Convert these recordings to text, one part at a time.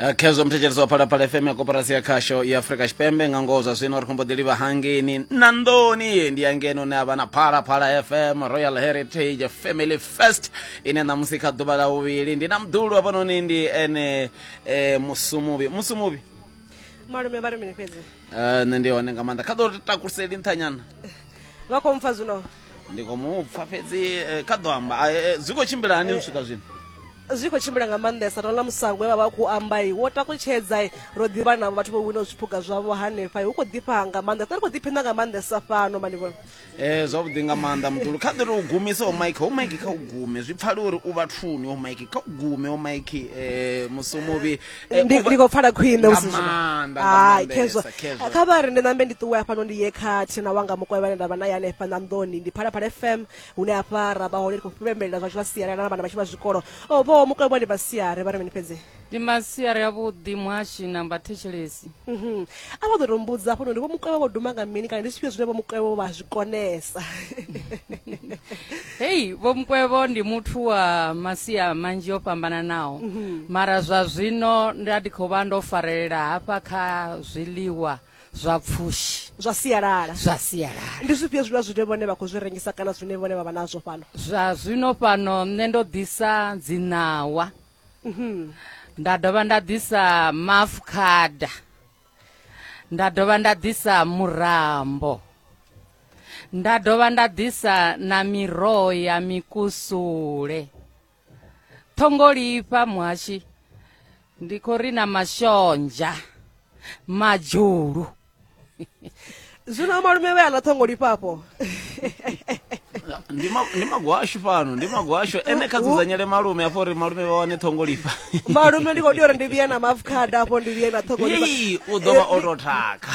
Eh, khezwo muthetshelesi wa phalaphala fm ya koporasi ya khasho ya afrika tshipembe nga ngoho zwa zwino ri khombo ḓi livha hangeni na nḓoni ndi ya ngeno ne a vha na phalaphala fm royal heritage family first ine ṋamusi kha ḓuvha ḽa vhuvhili ndi na mdulu hafhanoni ndi ene eh, musumuvhi musumuvhi malume vha ri mini fhedzi Eh, nṋe ndi hone nga maanḓa kha ḓo takuseli nṱhanyana vha khou mpfa zwino ndi khou mu pfa fhedzi eh, kha ḓo amba Ah, eh, zwi khou tshimbila hani u swika zwino zwi khou tshimbila nga maanḓesa ro na musango we vha vha khou amba i wo takutshedza i ro ḓivha na vhathu vho winaho zwiphuga zwavho hanefha i hu khou ḓifha nga maanḓesa ri khou ḓiphina nga maanḓesa fano manivhona Eh, zwavhuḓi nga maanḓa muṱulu kha ḓiri u gumise o mike o mike kha u gume zwi pfale uri u vhathuni o mike kha u gume o mike um musi muvhi Eh, ndi u vha- ndi khou pfala khwine Nga husi zwino. maanḓa, nga Hai, maanḓesa, khezwa khezwa. kha vha ri ndi nambe ndi ṱuwe hafhano ndi ye kha thina wanga mukovhe vhane nda vha naye hanefha ṋanḓoni ndi phalaphala fm hune hafha ra vha hone ndi khou pembelela zwashu vha sialala na vhana vhashu vha zwikolo o vho mukovhe vhone vha siare vha ri mini fhedzi ndi masiari avhuḓi muhashi na mbathetshelesi Mhm. a vha ḓo tou mbudza hafhanoni vho mukwevho vho duma nga mini kana ndi zwifhio zwine vho mukwevho vha zwi konesa hei vho mukwevho ndi muthu wa masia manzhi o fhambananaho mhm. mara zwa zwino nda ndi khou vha ndo farelela hafha kha zwiḽiwa zwa pfushi zwa sialala zwa sialala ndi zwifhio zwiḽiwa zwine vhone vha khou zwi rengisa kana zwine vhone vha vha nazwo fhano zwa zwino fhano nṋe ndo ḓisa dziṋawa mhm. nda dovha nda ḓisa mafukhada nda dovha nda ḓisa murambo nda dovha nda ḓisa na miroho ya mikusule ṱhongolifha muhashi ndi khou ri na mashonzha madzhulu zwino amalume vhe a ḽa ṱhongo lifhafho ndi ma- ndi magwashu fhano ndi magwashu ene kha dzudzanyele malume afho uri malume vha wane ṱhongo lifha malume ndi khou tea uri ndi vhuye na maafukhada afho ndi vhuye na ṱhongo lifha Hei, u ḓo vha o tou thakha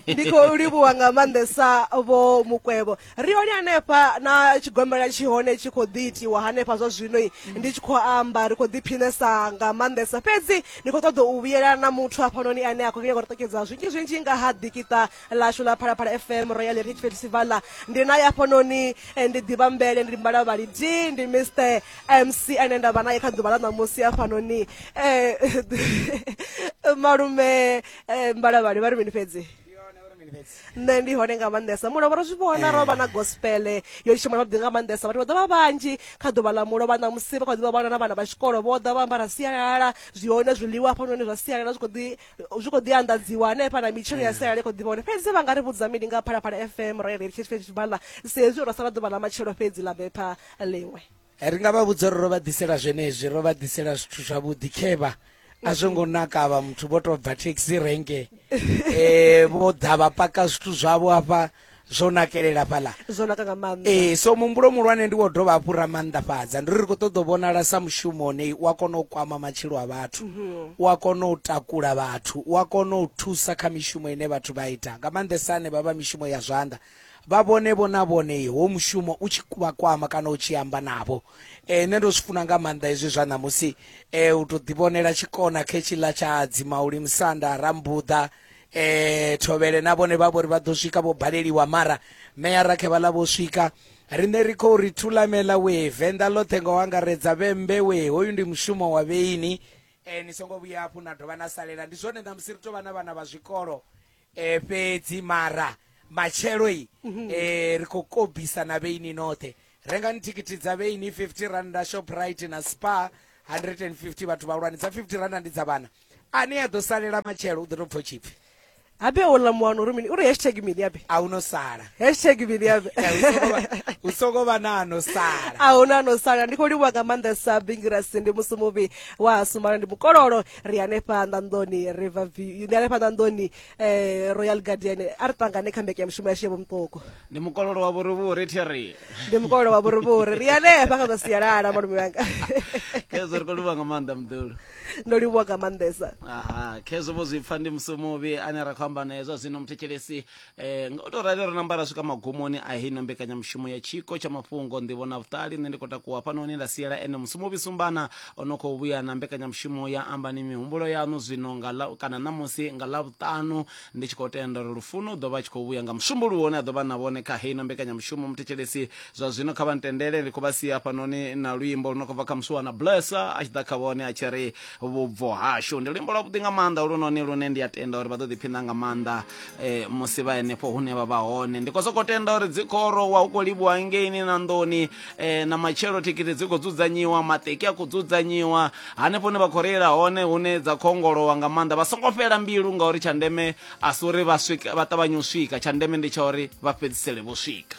ndi khou livhuwa nga maanḓesa vho mukwevho ri hone hanefha na tshigombela tshi hone tshi khou ḓi itiwa hanefha zwa zwino ndi tshi khou amba ri khou ḓiphinesa nga maanḓesa fhedzi ni khou ṱoḓa u vhuyela na muthu hafhanoni ane a khou nyaka u ṱokedza zwinzhi zwinzhi nga ha ḓikiṱa ḽashu ḽa phalaphala fm royal heritage festival ndi naye hafhanoni eh, ndi ḓivha mbele ndi mbala vhalidi ndi mr mc ane nda vha naye kha ḓuvha ḽa ṋamusi hafhanoni um malume eh, mbalavhali vha ri mini fhedzi nṋe ndi hone nga maanḓesa mulovha ro zwi vhona ro vha na gospele yo litsha mwana vhaḓi nga maanḓesa vhathu vha ḓa vha vhanzhi kha ḓuvha ḽa mulovha ṋamusi vha kha ḓivha vhana na vhana vha tshikolo vho ḓa vha ambara sialala zwi hone zwiḽiwa hafhanoni zwa sialala zwi khou ḓi anḓadziwa hanefha na mitshelo ya sialala i khou ḓivha hone fhedzi vha nga ri vhudza mini nga phalaphala fm royal heritage festival sa hezwi ro sala ḓuvha ḽa matshelo fhedzi ḽa bepha ḽiṅwe ri nga vha vhudza uri ro vha ḓisela zwenezwi ro vha ḓisela zwithu zwavhuḓi khevha a zwo ngo naka vha muthu vho to bva taxi renke eh vho ḓa vha paka zwithu zwavho hafha zwo nakelela fhaḽa zwo naka nga maanḓa eh so muhumbulo muhulwane ndi wo dovha hafhu ra maanḓafhadza ndi uri ri khou ṱoḓa u vhonala sa mushumo une u a kona u kwama matshilo a vhathu mhm. u a kona u takula vhathu u a kona u thusa kha mishumo ine vhathu vha ita nga maanḓesa ane vha vha mishumo ya zwanḓa vha vhone vho na vhone ho mushumo u tshi vha kwama kana u tshi amba navho eh, nṋe ndo zwi funa nga maanḓa hezwi zwa ṋamusi eh, u tou ḓivhonela tshikona khetshiḽa tsha dzimauli musanda rambuḓa eh, thovhele na vhone vha vho ri vha ḓo swika vho baleliwa mara meya rakhe vha ḽa vho swika riṋe ri khou ri thulamela we venḓa ḽoṱhe nga u angaredza vhembe we hoyu ndi mushumo wa vheini eh, ni songo vhuya hafhu na dovha na salela ndi zwone ṋamusi ri tou vha na vhana vha zwikolo e, fhedzi mara matshelo i mhm. e, ri khou kobisa na vheini noṱhe rengani thikhithi dza vheini 50 randa shoprite na spa 150 vhathu vhahulwane dza 50 randa ndi dza vhana ane a ḓo salela matshelo u ḓo tou pfo tshipfi abe ola muwana uri mini uri hashtag mini abe a uno sala hashtag mini abe u songo vha na ano sala a una ano sala ndi khou livhuwa nga maanḓa sa bingirasi ndi musi muvhi wa sumala ndi mukololo ri hanefha nḓanḓoni river view ndi hanefha nḓanḓoni eh, royal guardian a ri ṱangane kha mbeke ya mushumo yashu ya vhomutoko ndi mukololo wa vhurivhuri theri ndi mukololo wa vhurivhuri ri hanefha kha zwa sialala malume wanga khezwo ri khou livhuwa nga maanḓa muḓulu ndo livhuwa nga maanḓesa aha khezwo vho zwi pfa ndi musi muvhi ane ra khou amba naye zwa zwino muthetshelesi Eh, nga u tou rali ro namba ra swika magumoni a heino mbekanyamushumo ya tshiko tsha mafhungo nḓivho na vhuṱali nṋe ndi khou takuwa fhano hune nda siela ene musumuvhi sumbana o no khou vhuya na mbekanyamushumo ya ambani mihumbulo yaṋu zwino nga ḽa kana ṋamusi nga ḽa vhuṱanu ndi tshi khou tenda uri lufuno u ḓo vha a tshi khou vhuya nga musumbuluwo une a ḓo vha na vhone kha heino mbekanyamushumo muthetshelesi zwa zwino kha vha ntendele ndi khou vha sia fhanoni na luimbo lu no khou bva kha musuwana blessa a tshi ḓa kha vhone a tshi ri vhubvo hashu ndi luimbo lwavhuḓi nga maanḓa lunoni lune ndi a tenda uri vha ḓo ḓiphina nga maanḓa eh, musi vha henefho hune vha vha hone ndi khou sokou tenda uri dzi khou rowa hu khou livhuwa ngeini na nḓoni eh, na matshelo thikhithi dzi khou dzudzanyiwa maṱeki a khou dzudzanyiwa hanefho hune vha khou reila hone hune dza khou ongolowa nga maanḓa vha songo fhela mbilu ngauri tsha ndeme a si uri vha swika vha ṱavhanye u swika tsha ndeme ndi tsha uri vha fhedzisele vho swika